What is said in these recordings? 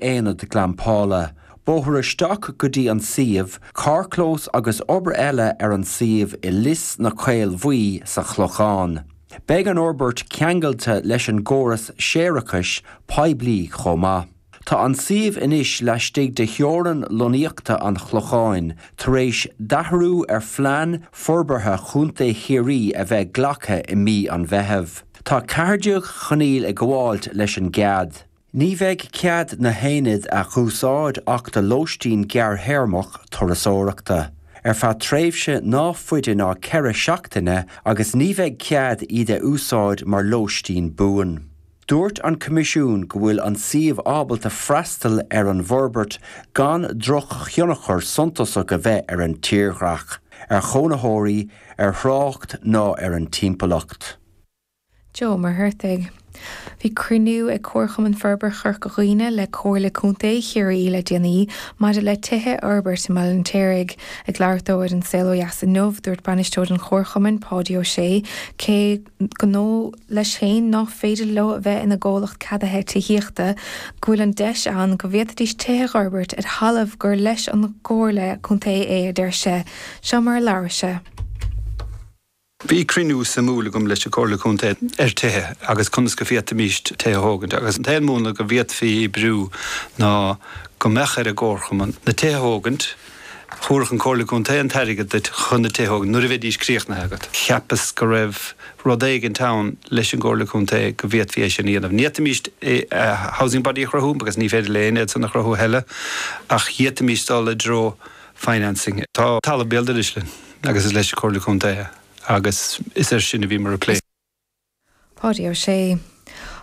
aonad glampála, bóthar isteach go dtí an suíomh, carrchlós agus obair eile ar an suíomh i Lios na Caolbhaí sa Chlochán. Beidh an fhorbairt ceangailte leis an gcóras séarachais poiblí chomh maith. Tá an suíomh anois laistigh de theorann lonnaíochta an Chlocháin, tar éis d'athrú ar phlean forbartha Chontae Chiarraí a bheith glactha i mí an Mheitheamh. Tá ceathair déag coinníoll ag gabháilt leis an gcead. Ní bheidh cead na haonaid a dh'úsáid ach do lóistín gearrthéarmach turasóireachta, ar feadh tréimhse ná faide ná ceithre seachtaine agus ní bheidh cead iad a úsáid mar lóistín buan. Dúirt an Coimisiún go bhfuil an suíomh ábalta freastal ar an bhforbairt gan drochthionchar suntasach a bheith ar an tírdhreach, ar chónaitheoirí, ar thrácht ná ar an timpeallacht. Joe Ó Muircheartaigh. Bhí cruinniú ag Comharchumann Forbartha Chorca Dhuibhne le Comhairle Contae Chiarraí le déanaí maidir le tithe a fhorbairt i mBaile an Fheirtéaraigh. Ag labhairt dó ar An Saol Ó Dheas inniu, dúirt Bainisteoir an Chomharchumainn, Páidí Ó Sé, cé gur dóigh leis féin ná féidir leo a bheith ina gcomhlacht ceadaithe tithíochta, go bhfuil an deis ann go bhféadfaidís tithe a fhorbairt ar thalamh gur leis an gComhairle Contae é, a deir sé. Seo mar a labhair sé. Bhí cruinniú suimiúil agam leis an Comhairle Contae ar tithe agus conas go bhféadfaimís tithe a thógaint agus an t-aon múnla go bhféadfaí oibriú ná go mbeadh ar an gComharchumann na tithe a thógaint, thabharfadh an Comhairle Contae an t-airgead duit chun na tithe a thógaint nuair a bheidís críochnaithe agat. Cheapas go raibh rud éigint ann leis an gComhairle Contae go bhféadfaí é sin a dhéanamh. Ní fhéadfaimís housing body a chruthú because ní féidir linn iadsan a chruthú a thuilleadh ach d'fhéadfaimís dul i dtreo financing. Tá talamh béal dorais linn. agus is leis an Chomhairle Contae agus is air sin a bhíomar ag plé. Páidí Ó Sé.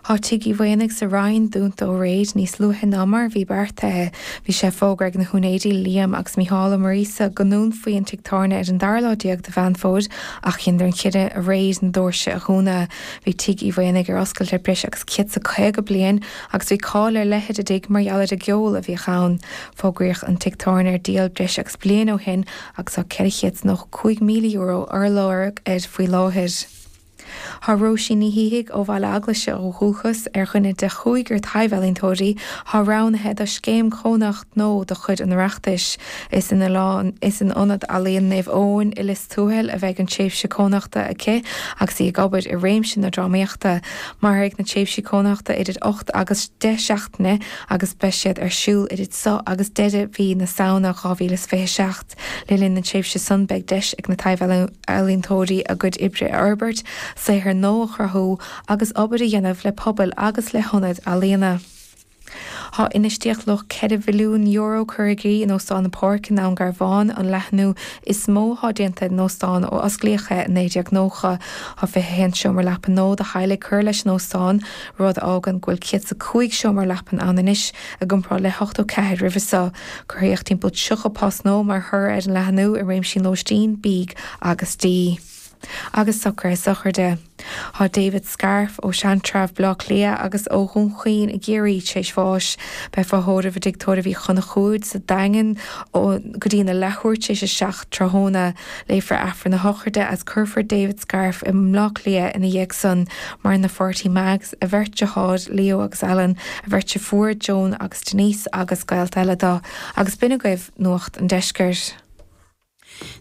Tá Tigh Uí Mhaonaigh sa Rinn dúnta ó aréir níos luaithe ná mar a bhí beartaithe. Bhí sé fógartha ag na húinéirí, Liam agus Mícheál Ó Muiríosa, go ndúnfaí an tigh tábhairne ar an dara lá déag de Mheán Fómhair ach dheineadar an cinneadh aréir na dóirse a dhúnadh. Bhí Tigh Uí Mhaonaigh ar oscailt le breis agus céad is caoga bliain agus bhí cáil ar leith ar an dtigh mar gheall ar an gceol a bhíodh ann. Fógraíodh an tigh tábhairne ar díol breis agus bliain ó shin agus tá €495,000 á lorg air faoi láthair. Tá Róisín Ní Shíthigh ó Bhaile Eaglaise ó dhúchas ar dhuine de chúigear taibhealaíntóirí atá roghnaithe do Scéim Chónaitheachta nua de chuid an Oireachtais. Is in Ionad Ealaíon Naomh Eoin i Lios Tuathail a bheidh an tréimhse cónaitheachta aici agus í ag obair i réimse na drámaíochta. Mairfidh na tréimhsí cónaitheachta idir ocht agus deich seachtaine agus beidh siad ar siúl idir seo agus deireadh mhí na Samhna 2027. Le linn na tréimhse san beidh deis ag na taibh-ealaíontóirí a gcuid oibre a fhorbairt, saothar nua a chruthú agus obair a dhéanamh le pobail agus le hionaid ealaíona. Tá infheistíocht luach €4 mhilliún curtha i gcrích in Óstán an Pháirc i nDún Garbhán, an leathnú is mó atá déanta ar an óstán ó osclaíodh é i 1990. Tá 21 seomra leapan nua do theaghlaigh curtha leis an óstán, rud a fhágann go bhfuil 105 seomra leapan ann anois. I gcomparáid le hochtó ceathair roimhe seo, cruthaíodh timpeall tríocha post nua mar thoradh ar an leathnú i réimsí an lóistín, bídh agus dí. Agus socruithe sochraide. Tá David Scarff, ó Sheantrabh, Baile Átha Cliath, agus ó Dhún Chaoin i gCiarraí, tar éis bháis. Beifear á thórramh i dtigh tórraimh Uí Chonchúir sa Daingean go dtí na leathuair tar éis a seacht tráthnóna. Léifear Aifreann na Sochraide is cuirfear David Scarff i mBleá Cliath ina dhiaidh san Maireann a pháirtí Mags, a bheirt deartháir, Leo agus Alan, a bheirt deirfiúr, Joan agus Denise agus gaolta eile do. Agus b'in agaibh Nuacht an Deiscirt.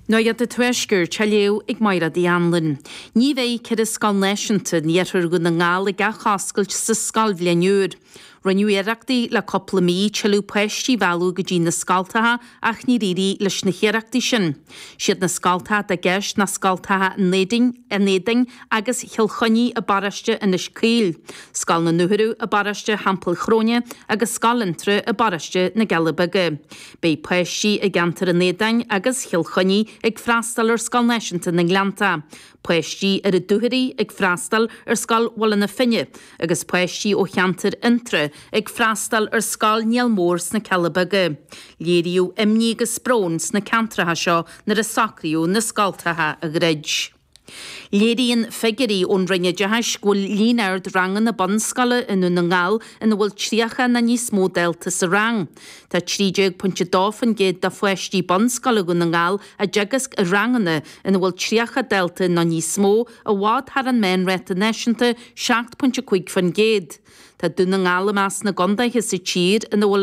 Nuacht an Tuaiscirt á léamh ag Máire D. Anluain. Ní bheidh ceithre scoil náisiúnta in iarthar Dhún na nGall ag athoscailt sa scoilbhliain úr. Rinneadh iarrachtaí le cúpla mí tuilleadh páistí a mhealladh go dtí na scoltacha ach níor éirigh leis na hiarrachtaí sin. Siad na scoltacha atá i gceist ná scoltacha an Éadain agus Chill Chainnigh i bparóiste Inis Caoil, Scoil na Dúchoradh i bparóiste Theampaill Chróine agus Scoil Fhionntrá i bparóiste na gCealla Beaga. Beidh páistí i gceantar an Éadain agus Chill Chainnigh ag freastáil ar Scoil Náisiúnta na nGleannta, páistí ar an Dúchoraidh ag freastáil ar Scoil Bhaile na Finne, Agus páistí ó cheantar Fhionntrá ag freastáil ar Scoil Niall Mór sna Cealla Beaga, léiríodh imní agus brón sna ceantracha seo nuair a socraíodh na scoltacha a dhruid. Léiríonn figiúirí ón Roinn Oideachais go bhfuil líon ard ranganna bunscoile i nDún na nGall ina bhfuil 30 nó níos mó dalta sa rang. Tá 13.2% de pháistí bunscoile Dhún na nGall á dteagasc i ranganna ina bhfuil 30 dalta nó níos mó, I bhfad thar an meánráta náisiúnta, 7.5%. Tá Dún na nGall i measc na gcontaetha sa tír ina bhfuil an.